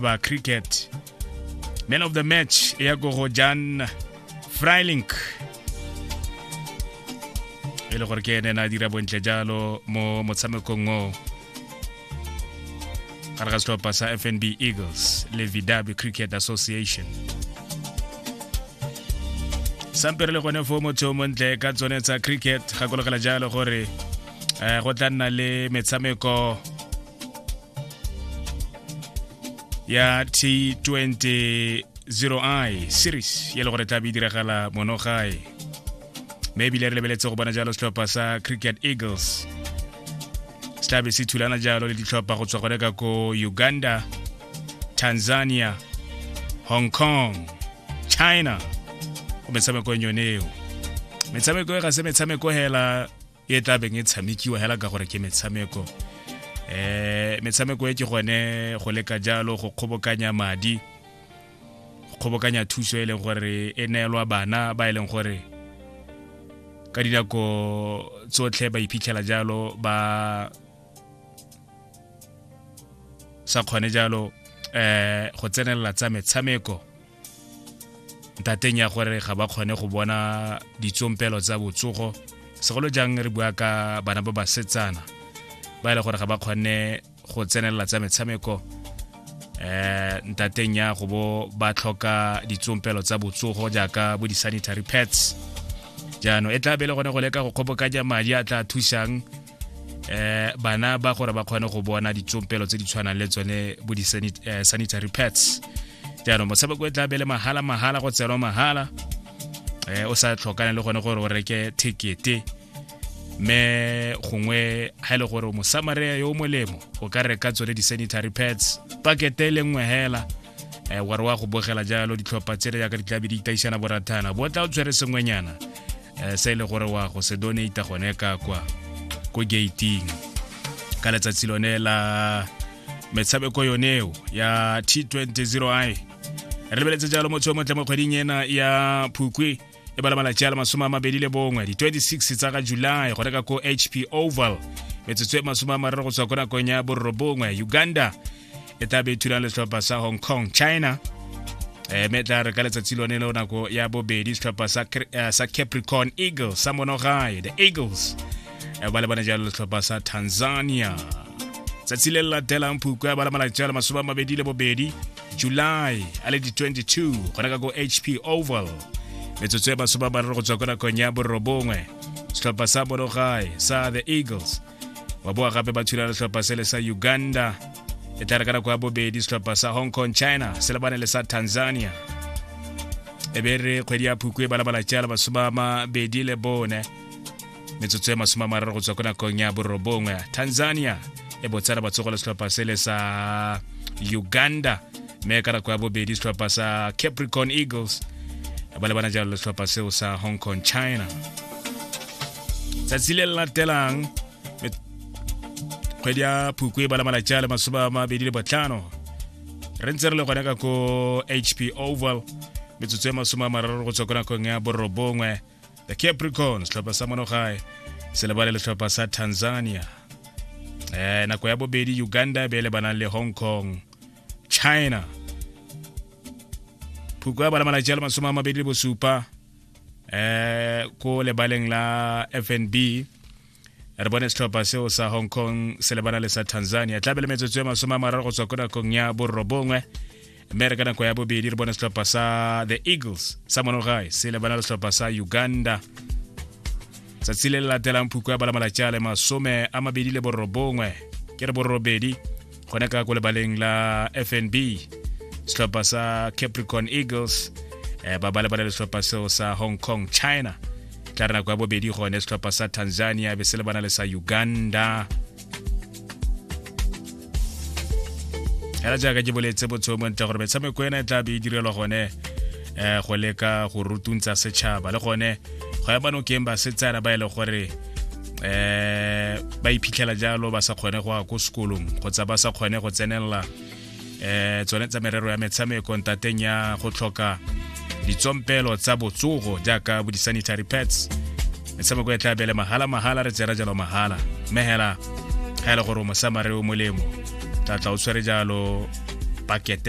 ba cricket man of the match e ya ko go jan frylink e le gore ke ene na dira bontle jalo mo motshamekong o gare ga setlhopha sa fnb eagles le vidabe cricket association sampere le gone fo motho o montle ka tsone tsa cricket gakologela jalo gore um go tla nna le metshameko ya t20 0i series ya le gore tla be e diragala mono gae mme ebile re lebeletse go bona jalo setlhopha sa cricket eagles se tlabe se thulana jalo le ditlhopha go tswa gone ka ko uganda tanzania hong kong china go metshamekong yone eo metshameko e ga se metshameko hela e tla beng e tshamekiwa hela ka gore ke metshameko eh metshameko e ke gone go leka jalo go kgobokanya madi go kgobokanya thuso e leng gore e neelwa bana ba e leng gore ka dinako tsotlhe ba iphitlhela jalo ba sa kgone jalo eh go tsenelela tsa metshameko ntateng ya gore ga ba kgone go bona ditsompelo tsa botsogo segolo jang re bua ka bana ba basetsana ba e le gore ga ba kgone go tsenelela tsa metshameko eh ntateng ya go bo ba tlhoka ditsompelo tsa botsogo jaaka bo di-sanitary pads jaanong e tla be e le gone go leka go kgobokanya madi a tla thusang eh bana ba gore ba kgone go bona ditsompelo tse di tshwanang le tsone bo di-sanitary eh, pads jaanong motshameko e tla bele mahala mahala go tsenwa mahala eh o sa tlhokane le gone gore o reke thekete me gongwe ga e le gore mosamarea yo o molemo o ka reka tsone di-sanitary pads pakete e le nngwe hela um eh, ware wa go bogela jalo ditlhopha tsele yaka di tlabe di itaisana borathana bo tla o tshwere sengwenyana um se e le gore wa go se donata gone ka kwa ko gating ka letsatsi lone la metshameko yoneo ya t 20 i re lebeletse jalo motho yo motle mo kgweding ena ya phukwe e bala malatsi a le masome a mabedi le bongwe di-26 tsa ga july go reka ko hp oval metsotso e masome a mararo go tswa ko nakong ya borobongwe uganda e tla be thulang letlhopha sa hong kong china eh, mme tla re ka letsatsi lone leo nako ya bobedi setlhopha sa, eh, sa capricorn eagle sa monogae the eagles eh, ba lebane jalo letlhopha sa tanzania tsatsi le le latelang phukwe ya bala malatsi a le masome a mabedi le bobedi july a le di-22 gona ka ko hp oval metsotso ya masome a mararo go tswa ko nakong ya borobongwe setlhopha sa borogae sa the eagles wa boa gape ba thula letlhopha se le sa uganda e tla re ka nako ya bobedi setlhopha sa hong kong china se lebane le sa tanzania e be re kgwedi ya phukwe ba labalatša le masome a mabedi le bone metsotso e masome a mararo go tswa ko nakong ya borobongwe tanzania e botsana batsogo le setlhopha sele sa uganda mme ka nako ya bobedi setlhopha sa capricorn eagles ba lebana jalo le setlhopha seo sa hong kong china tsatsi le le latelang kgwedi ya phukwe e bala malatsi a le masome a mabedi le botlhano re ntse re le gone ka ko hp oval metsotso e masome a mararo go tswa ko nakong ya borobongwe the capricorn setlhopha sa monogae se lebale le setlhopha sa tanzania eh nako ya bobedi uganda e be e lebanang le hong kong china phuko ya bana malatsi a le masome a mabedi le bosupa eh ko lebaleng la fnb re bone setlhopha seo sa hong kong se lebana le sa tanzania tla bele metsotso ya masome a mararo go tswa ko nakong ya borobongwe mme re ka nako ya bobedi re bone setlhopha sa the eagles sa monogae se lebana le setlhopha sa uganda tsatsi le le latelang phuko ya balamalajale masome a mabedi le borobongwe ke re borobedi gone ka ko lebaleng la fnb setlhopha sa capricorn eagles eh, ba ba lebala le setlhopha seo sa hong kong china tla re nako ya bobedi gone setlhopha sa tanzania be se lebana le sa uganda fela jaaka ke boletse botsheo montle gore metshameko ena e tla be e direlwa gone um go leka go rutuntsa setšhaba le gone go ya banokeng basetsana ba e le gore eh ba iphitlhela jalo ba sa kgone go ya ko sekolong kgotsa ba sa kgone go tsenelela eh tsone tsa merero ya metshameko ntateng ya go tlhoka ditsompelo tsa botsogo jaaka bo di-sanitary pads metshameko e tla bele mahala mahala re tsera jalo mahala mme hela ga e le gore o mosamare o molemo tla tla o tshwere jalo paketeng